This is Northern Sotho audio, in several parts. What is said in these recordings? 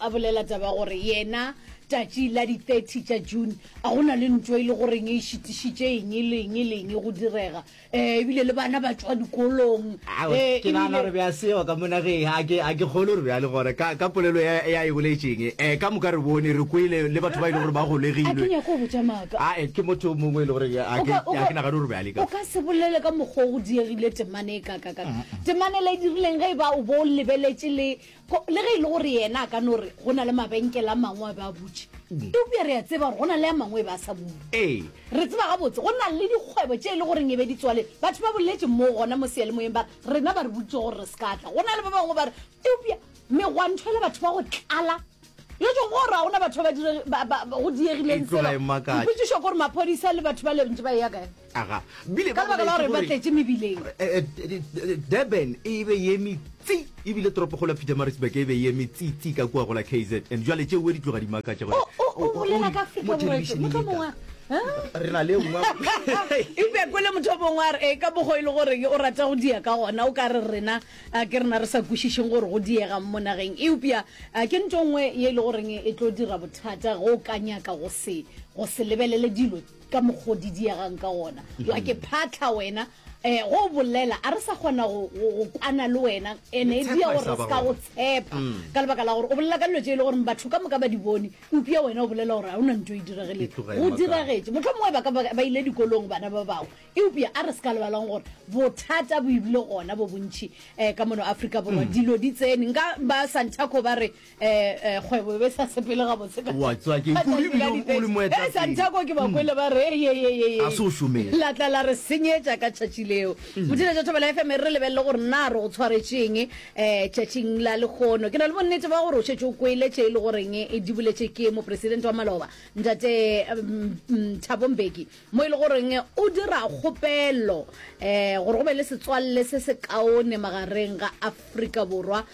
A bolela taba gore yena tšatši la di 30 tša June a go na le ntwo e le goreng e šitišitše eng le eng le eng go direga um ebile le bana ba tšwa dikolong um ke nagana gore be a seo ka monageng a ke a ke kgole gore bjale gore ka ka polelo ya ya e boletšeng um eh, ka moka re bone re kwele le batho ba e le gore ba golegilwe a ke botša maaka a eh, ke motho mongwe e le gore a ke a ke nagana gore be a le ka o ka se bolele ka mokgwa go diegile temane e ka ka ka temane le dirileng ge e ba o bo lebeletše le Go, le ge e le gore yena a ka no re go na le mabenkele a mangwe a be a butše, eupša re a tseba gore go na le a mangwe e be a sa bule. Ee. Re tseba gabotse go na le dikgwebo tše e le goreng e be di tswaletswe. Batho ba boletše moo gona mo seyalemoyeng ba re, Rena ba re boditše gore re se ka tla. Go na le ba bangwe ba re, Eupša megwanto e le batho ba go tlala. Yo tšwa go gore ga go na batho ba ba dire, ba, ba, ba, go diegileng E tloga selo. e makatša. Dipotšišo ke gore maphodisa le batho ba le bantši ba eya kae? Aga, bile ba lebaka la gore ba tletše mebileng. Eh, eh, Durban e be ye metsi ebile toropokgolo ya Pietermaritzburg e be ye metsi ka kua go la KZN. Jwale tšeo di tloga di makatša gore o bolela ka Afrika Borwa motho mongwe re na le nngwe ipe kwele motho o mongwe a re ee ka bogo e le gore o rata go diya ka gona o ka re rena ke rena re sa kwešišeng gore go diega mo nageng eupša ke nto nngwe ye e le goreng e tlo dira bothata go ka nyaka go se lebelele dilo ka mokgwa o di diegang ka gona wa ke phatlha wena um go bolela a re sa kgona go go- go kwana le wena ene e dia Letshepa e gore sa re ba se ka go gona. tshepa ka lebaka la gore o bolela ka dilo tse e le gore batho ka moka ba di bone upša wena o bolela gore ga o na nto e dirageleng Itlogele go makala. diragetše motlho mongwe ba ka ba ba ile dikolong bana ba bangwe eupša a re se ka lebalang gore bothata bo ebile gona bo bontšhi um ka mono aforika borwa dilo di tsene nka ba santaco ba re eh, kgwebo be sa sepele gabotse ka- Wa tswa ke ka kudu tsatsi la ebile o dipedi. le moetapele. Eh, santaco ke ba kwele ba re "Hey, hey, hey, hey, hey." A se o šomele. la tla la re senyetša ka tšatši leo mothiletša tšatho bela fm re lebelele gore na re go tshwaretšeng um tšatšing la lekgono ke na le bonnete ba gore o šetse o kwele tše e le goreng e diboletše ke mopresidente wa maloba ntate um, um, thabo mbeki mo e le goreng o dira kgopelo um gore go be le setswalle se se kaone magareng ga afrika borwa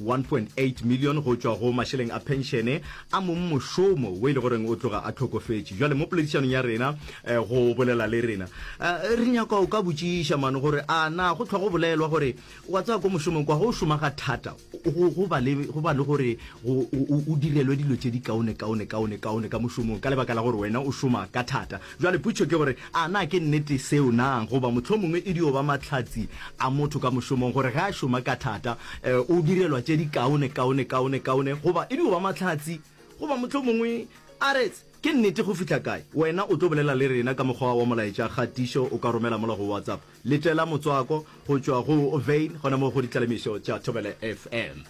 1.8 million go tšwa go mašeleng a phenšene a mong mošomo wo e le goreng o tloga a tlhokofetše. Bjale mo poledišanong ya rena go bolela le rena re nyaka o ka botšiša mane gore a na go tlhwa go bolelwa gore wa tsaya ko mošomong kwa go šoma ga thata go ba le go ba le gore o direlwe dilo tše di kaone kaone kaone kaone ka mošomong ka lebaka la gore wena o šoma ka thata. Bjale potšo ke gore, A na ke nnete seo na? Goba mohlomongwe e dio ba mahlatse a motho ka mošomong, gore ge a šoma ka thata, e, o direlwa tše dikaone, kaone, kaone, kaone. Goba e dio ba mahlatse. Goba mohlomongwe a re, Ke nnete go fihla kae? Wena o tlo bolela le rena ka mokgwa wa molaetša kgatišo, o ka romela mola go WhatsApp. Letela motswako go tšwa go Vein, gona moo go ditlalemišo tša Thobela FM.